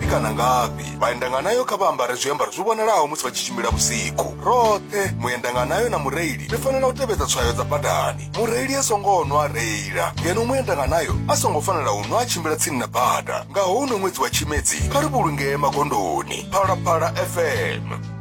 ngafhi kana ngafhi vhaendanganayo kha vha ambare zwiambaro zwi vhonalaho musi vha tshi tshimbila vhusiku roṱhe muendanganayo na mureili ri fanela u tevhedza tswayo dza badani mureili a songo nwa reila ngeno muendanganayo a songo fanela u nwa a tshimbila tsini na bada nga houno ṅwedzi wa tshimedzi kha ri vhulungee magondoni phalaphala fm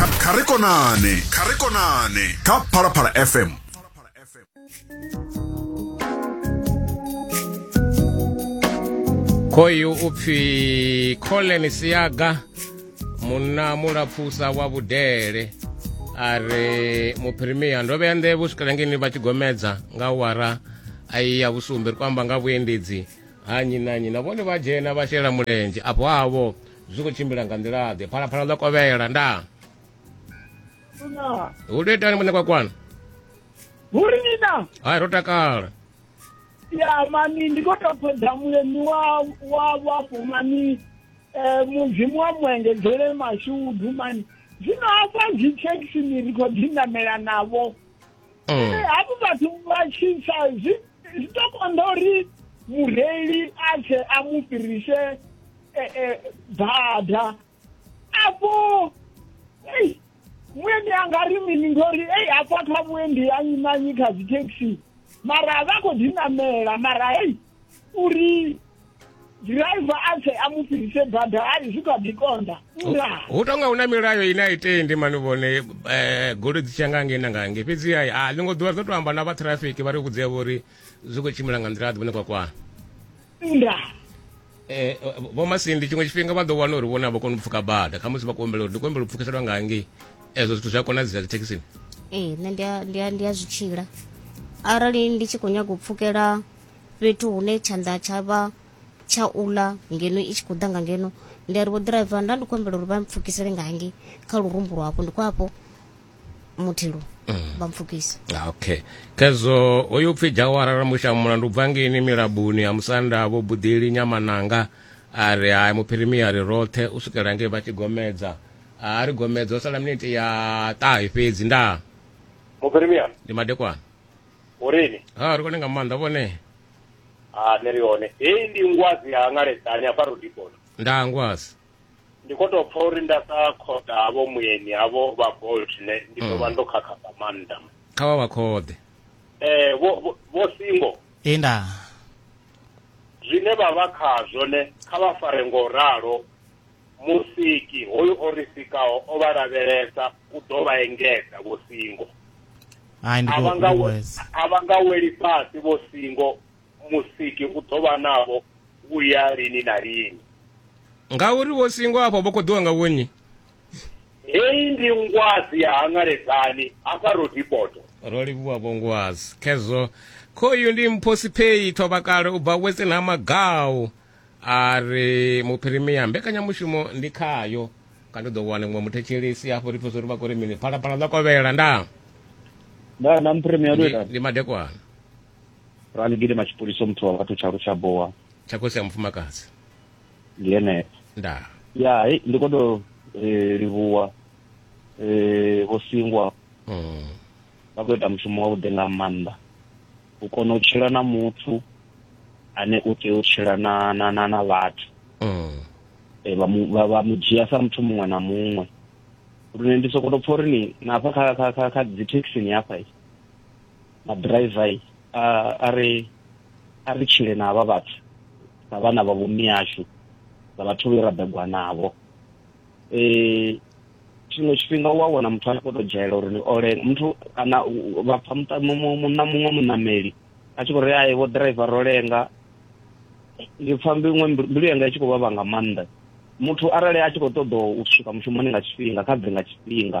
kha kha ri konane kha ri konane kha phalaphala fm khoyu u pfi collen siaga munna mulapfusa wa vhudele a re muphirimiya ndo vhea nḓevhe u swikela ngeni vha tshi gomedza nga wara a i ya vhusumbe ri khou amba nga vhuendedzi ha nnyi na nnyi na vhone vha dzhena vha shela mulenzhe afho havho zwi khou tshimbila nga nḓila-ḓe phalaphala ḽo kovhela nda hu tou itani muṋe kwakwana hu ri nina hai ro takala ya mani ndi khou tou ṱoḓa mulemi wa wa wapo mani um mudzimu wa muengedzele mashudu mani zwino hafha dzi thekisini ri khou dzi namela navho mm. hafhu vhathu vha tshisa zwi tou konḓa uri mureili a tshe a mu fhirise eh, eh, bada apo ei mwendi angari mini ndori ei apo atwa mwendi anyimanyika zitaxi mara avako ndinamela mara hei uri driver atse amufirise bada ari zvikadikonda ura hu tonga hu na milayo ine a itendi mani vhone um goloi dzi tshiya nga ngei na nga ngei fhedzi hai a ḽingo ḓuvha ri ḓo to amba na vha traffic vha ri vhudzea vho uri zwi khou tshimbila nga nḓila a ḓi vhone kwakwana nda eh, vho masindi tshiṅwe tshifhinga vha ḓo wana uri vhone a vha koni u pfuka bada kha musi vha khou humbela uri ndi khou humbela u pfukiselwa nga hangei ezwo zwithu zwi a konadzea dzithekhisini ee nṋe ndi a- ndi a- ndi a zwi tshila arali ndi tshi khou nyaga u pfukela fhethu hune tshanḓa tsha vha tsha uḽa ngeno i tshi khou ḓa nga ngeno ndi a ri vho ḓiraiva nda ndi khou humbela uri vha mpfukisele nga hangei kha lurumbu lwavho ndi khou afho muthilu vha mpfukisa ah, okay khezwo hoyu pfhi jawara ramusha mulandu bva ngeni milabuni ya musanda vho buḓeli nyamananga a ri hai muphirimia ri roṱhe u swikela ngei vha tshi gomedza a ri gomedza o sala miniti ya ṱahe fhedzi ndaa muphirimia ndi madekwana urini ha ri kone nga maanḓa vhone a nṋe ri hone heyi ndi ngwazi ya ngaledza ni afha rudipona ndaa ngwazi ndi kho to pfa uri nda sa khoḓa havho muyeni havho vha bolt ne ndi ḓo vha mm. ndo khakha nga maanḓa kha vha vha khoḓe eh vho vho singo ee nda zwine vha vha khazwo ne kha vha fare ngo ralo musiki hoyu o ri sikaho o vha lavhelesa u ḓo vha engedza vho singo a vha nga weli fhasi vho singo Musiki u ḓo vha navho vhuya lini na lini. Ngauri vho singwa afho vho koḓiwa nga vhunyi. Heyi ndi ngwazi ya hangaledzani hafha Rodipoto. Ro livhuwa vho ngwazi khezwo. Khoyu ndi mphosiphei thovhakale u bva Western ha Magau a ri muphirimia mbekanyamushumo ndi khayo ka ndi ḓo wana muṅwe muthetshelesi hafho ri pfesa uri vha kho ri mini phalaphala ḽa kovhela ndaa ndaa na muphirimia ndi madekwana ra ni gidima tshipoliso muthu wa vhathu tshalo tsha bowa tsha khosi ya mufumakadzi ndi yeneyo nda ya hei ndi khou tou eh, livhuwa eh, vho singwa mm. vha khou ita mushumo wavhuḓi nga maanḓa u kona u tshila na muthu ane u tea u tshila na na na na vhathu Mm. eh, vha mu- vha- vha mu dzhia sa muthu muṅwe na muṅwe lune ndi sokoto pfa uri ni na hafha kha kha kha kha dzithekhisini hafha i na driver a a ri a ri tshile na avha vhathu na vhana vha vhumi yashu na vhathu vhe ra begwa navho eh tshiṅwe tshifhinga u a wana muthu a khou tou dzhaela uri ni ole muthu kana vha pfa muṱa muṅwe muṋameli a tshi khou ri ae vho driver ro lenga ndi pfa mbiṅwe mbilu yanga i tshi khou vhavha nga maanḓa muthu arali a tshi khou ṱoḓa u swika mushumoni nga tshifhinga kha bve nga tshifhinga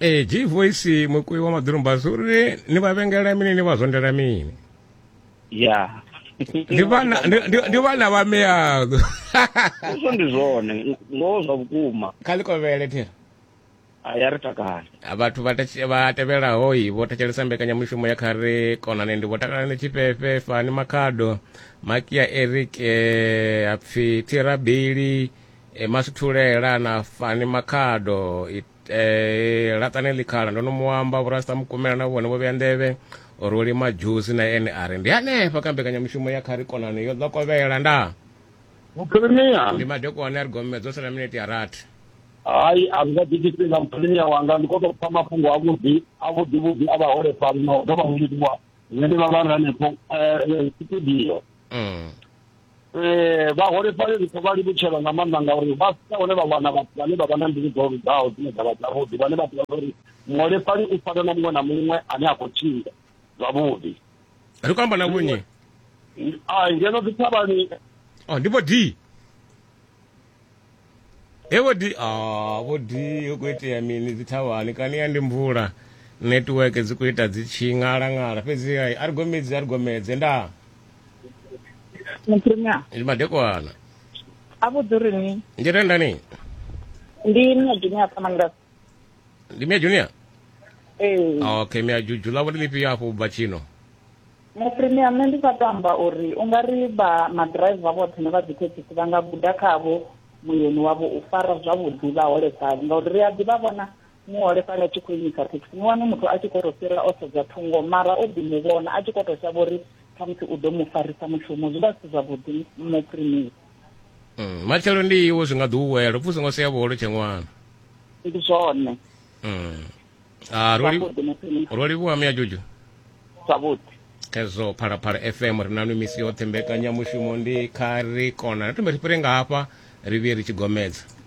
ee g voice mukui wa maḓoromba zwi uri ni vha vhengela mini ni vha zwondela mini ya ndi vhana ndi vhana vha meyago izwo ndi zwone ngoho zwa vhukuma kha ḽi kovhele thera ya ri takale vhathu vha tevhelaho i vho thetshelesa mbekanyamushumo ya kha ri konane ndi vho takala ni tshifhefhe fani makhado makia eric eh, apfi thirabili e masithulela na fani makhado e, e, laṱani ḽikhala ndo no mu amba vhurasta mukumela na vhone vho vhea nḓevhe ro lima dzhusi na ene a ri ndi hanefha kha mbekanyamushumo ya khari konani yo ḓokovhela nda muphirimia ndi madekwane a ri gomedzo o sala minete ya rathi hayi a zwi nga ḓi tshifhinga muphirimia wanga ndi khou tou pfa mafhungo avhuḓi avhuḓi vhuḓi a vhaholefhali na u dovha u livhuwa zwine vha vha ri hanefho eh, eh, studio mm. eh vhaholefhali ri khou vha livhutshela nga maanḓa ngauri vha sika hone vha wana vhathu vhane vha vha na mbilu dzo lugaho dzine dza vha dzavhuḓi vhane vha ḓivha uri muholefhali u fana na muṅwe na muṅwe ane a khou tshila zwavhuḓi ri khou amba na vhonye a ngeno dzi thavhani oh, ndi vho d he vho di ah, vho di hu khou itea mini dzi thavhani kani ya ndi mvula netiweke dzi khou ita dzi tshi ṅalaṅala fhedzi hai a ri gomedzi a ri gomedze ndaa mupremia ndi madekwana a vhudzi uri ni ndi renda ni ndi nna dini a pfamangas ndi mia junior ee okay mia juju ḽa vhone ḽifhio hafho u bva tshino nṋe premium nṋe ndi sa to amba uri u nga ri vha maḓiraiva vhoṱhe ne vha dzithekhisi vha nga guda khavho muyeni wavho u fara zwavhuḓi vhaholefhali ngauri ri a ḓivha vhona muholefhali a tshi khou imisa thekhisi ni wane muthu a tshi khou to fhira o sedza thungo mara o ḓi mu vhona a tshi khou to shavha uri khamusi u ḓo mu farisa mushumo zwi vha zwi si zwavhuḓi nṋe premium mm, matshelo ndi iwe zwi nga ḓi u wela upfi u songo sea vholo tshe ṅwana ndi zwone mm. ah, ro livhuwa miya juju zwavhuḓi khezwo phalaphala fm ri na misi yoṱhe mbekanyamushumo ndi kha ri kona ri thome ri fhire nga hafha ri vhuye ri tshi gomedza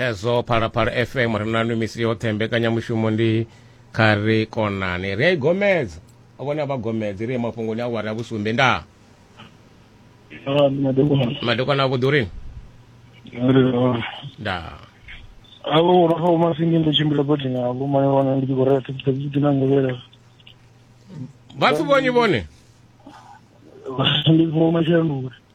khezwo phalaphala fm ri na nwi misi yoṱhe mbekanyamushumo ndi kha ri konani ri a i gomedza vhone a vha gomedzi ri ye mafhungoni a wari a vhusumbe ndaa ah, madekwana avhuḓi urini ndaa avo vhono fa vhomasingi ndo tshimbila bodi navo maye wana ndi tshi khou rea thekithekiti na ngovhela vhathu vonyi vhone ndi vomashanduka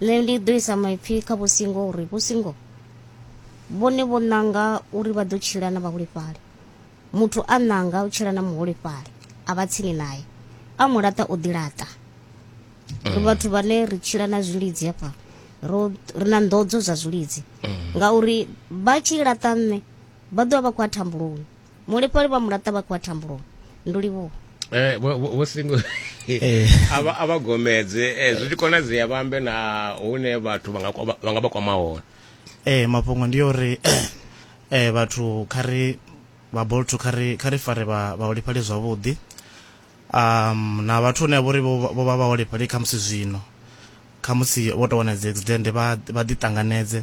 nṋe ndi ḓo isa maipfi kha vhusingo uri vhusingo vhone vho ṋanga uri vha ḓo tshila na vhaholefhali muthu a ṋanga u tshila na muholefhali a vha tsini naye a mu laṱa o ḓilaṱa ri vhathu vhane ri tshila na zwilidzi hafha ro ri na nḓodzo zwa zwilidzi ngauri vha tshi laṱa nṋe vha ḓovha vha khou a thambuloni mulefhali vha mulaṱa vha khou vha thambuloni ndulivhuwa Eh, vho singo eh. a vha gomedze eh, zwi tshi konadzea vha ambe na hune vhathu vha nga vha kwama hone ee mafhungo ndi ya uri um vhathu kha ri vha bolto kha ri kha ri fare vhaholefhali zwavhuḓi um na vhathu hune vhori vho vha vhaholefhali kha musi zwino kha musi vho tou wana dzi accident vha ḓiṱanganedze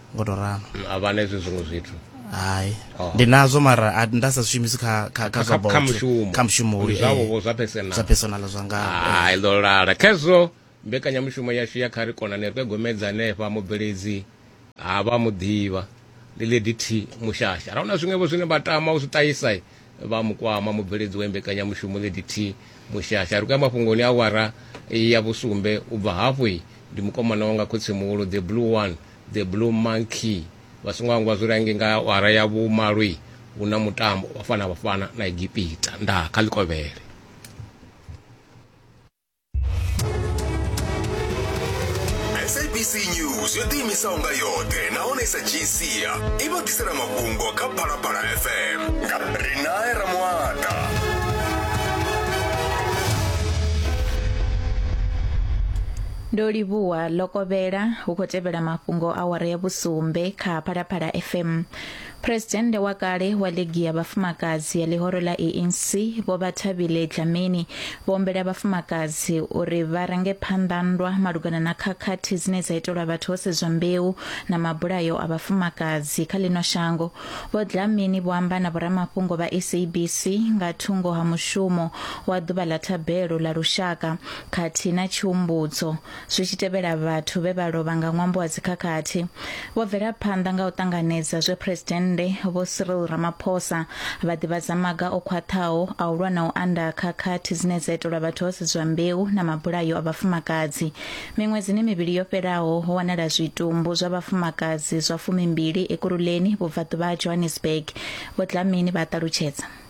ngo to ralo a vha na hezwi zwiṅwe zwithu hai oh. ndi nazwo mara a nda sa shumisi kha kha kha zwa kha mushumo kha mushumo uri zwa vho zwa personal zwa personal zwa nga hai ndo lala khezwo mbekanyamushumo yashu ya kha ri kona ne ri gomedza hanefha mubveledzi ha vha muḓivha ndi lady t mushasha ra una zwiṅwevho zwine vha tama u zwi ṱahisa vha mukwama mubveledzi wa mbekanyamushumo ZDT Mushasha ri khou ya mafhungoni a awara ya vhusumbe u bva hafhu ndi mukomana wanga khotsi muhulu the blue one the blue monkey vha songo hangwa zwi range nga awara ya vhumalo hu na mutambo wa fana vhafana na egipita nda kha ḽikovhele sabc news yo ḓiimisaho nga yoṱhe nahone sa gc i vha ḓisela mafhungo kha phalaphala fm nga rinae ramuata ndo livhuwa lokovhela hu khou tevhela mafhungo awara ya vhusumbe kha phalaphala fm Phresidennde wa kale wa ligi ya vhafumakadzi ya ḽihoro ḽa ANC vho Vhathabile Dlamini vho ombela vhafumakadzi uri vha range phanḓa nndwa malugana na khakhathi dzine dza itelwa vhathu ho sedzwa mbeu na mabulayo a vhafumakadzi kha ḽino shango. Vho Dlamini vho amba na vhoramafhungo vha SABC nga thungo ha mushumo wa ḓuvha ḽa thabelo ḽa lushaka khathihi na tshihumbudzo Zwi tshi tevhela vhathu vhe vha lovha nga ṅwambo wa dzikhakhathi, vho bvela phanḓa nga u ṱanganedza zwe Phresidennde Vho Cyril Ramaphosa vha ḓivhadza maga o khwaṱhaho a u lwa na u anda ha khakhathi dzine dza itelwa vhathu ho sedzwa mbeu na mabulayo a vhafumakadzi. Miṅwedzini mivhili yo fhelaho, ho wanala zwitumbu zwa vhafumakadzi zwa fumimbili Ekurhuleni, vhubvaḓuvha ha Johannesburg, Vho Dlamini vha a ṱalutshedza.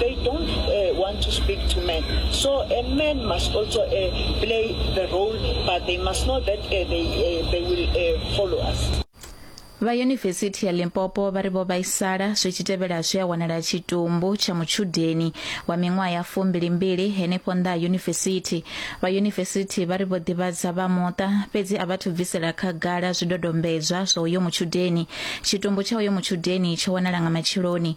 they don't uh, want to speak to men. So a man must also uh, play the role, but they must know that uh, they, uh, they will uh, follow us. vha yunivesithi ya limpopo vha ri vho vhaisala zwi tshi tevhela zwi a wanala tshitumbu tsha mutshudeni wa miṅwaha ya fumbilimbili henefho nnḓa ha yunivesithi vha yunivesithi vha ri vho ḓivhadza vha muṱa fhedzi a vhathu bvisela khagala zwidodombedzwa zwa uyo mutshudeni tshitumbu tsha uyo mutshudeni tsho wanala nga matsheloni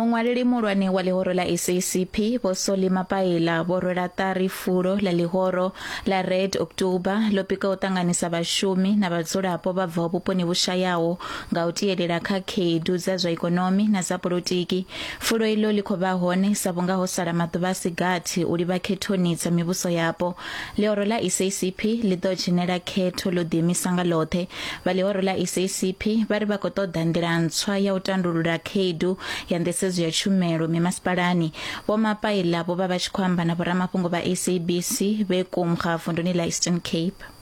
Muṅwaleli muhulwane wa ḽihoro ḽa SACP Vho Solly Mapaila vho rwela ṱari fulo ḽa ḽihoro ḽa Red October ḽo pika u ṱanganisa vhashumi na vhadzulapo vha bvaho vhuponi vhu shayaho nga u tielela kha khaedu dza zwa ikonomi na dza polotiki Fulo iḽo ḽi khou vha hone, sa vhunga ho sala maḓuvha a si gathi u livha khethoni dza mivhuso yapo. Ḽihoro ḽa SACP ḽi ḓo dzhenela khetho ḽo ḓiimisa nga ḽoṱhe. Vha ḽihoro ḽa SACP vha ri vha khou ṱoḓa nḓila ntswa ya u tandulula khaedu ya nḓisedzo ya tshumelo mimasipalani. Vho Mapaila vho vha vha tshi khou amba na vhoramafhungo vha SABC vhe Kumga vunduni ḽa Eastern Cape.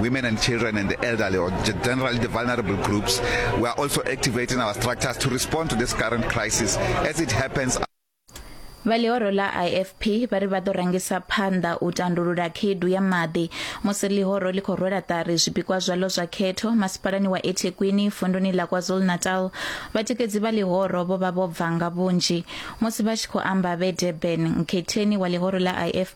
women and children and the elderly or generally the vulnerable groups. We are also activating our structures to respond to this current crisis as it happens vha ḽihoro ḽa ifp vha ri vha ḓo rangisa phanḓa u tandulula khaedu ya maḓi musi ḽihoro ḽi khou rwela ṱari zwipikwa zwaḽo zwa khetho masipalani wa ethekwini vunduni ḽa kwazulu-natal vhatikedzi vha ḽihoro vho vha vho bva nga vhunzhi musi vha tshi khou amba vhe durban nkhetheni wa ḽihoro ḽa ifp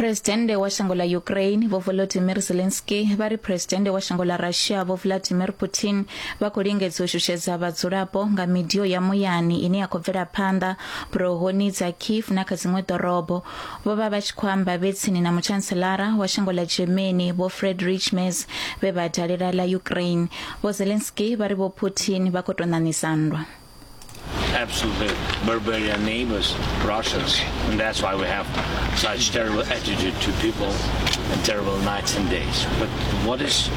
Presidennde wa shango ḽa Ukraine Vho Volodymyr Zelensky vha ri Presidennde wa shango ḽa Russia Vho Vladimir Putin vha khou lingedza u shushedza vhadzulapo nga midio ya muyani ine ya khou bvela phanḓa burohoni dza Kiev na kha dziṅwe ḓorobo. Vho vha vha tshi khou amba vhe tsini na muchanselara wa shango ḽa Germany Vho Friedrich Merz vhe vha dalela ḽa Ukraine. Vho Zelensky vha ri Vho Putin vha khou tou ṋaṋisa nndwa. absolutely barbarian neighbors, Russians, and that's why we have such terrible attitude to people and terrible nights and days. But what is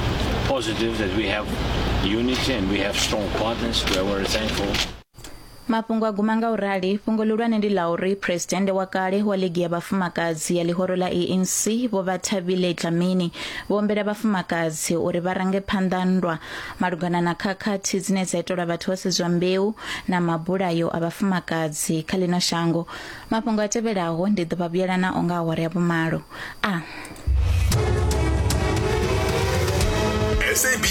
positive that we have unity and we have strong partners. We are very thankful. mafhungo a guma nga u rali fhungo ḽihulwane ndi ḽa uri phuresidennde wa kale wa ligi ya vhafumakadzi ya ḽihoro ḽa anc vho vha thabile dlamini vho ombela vhafumakadzi uri vha range phanḓa nndwa malugana na khakhathi dzine dza itelwa vhathu ho sedzwa mbeu na mabulayo a vhafumakadzi kha ḽino shango mafhungo a tevhelaho ndi ḓo vha vhuyela na o nga awara ya vhumalo a ah.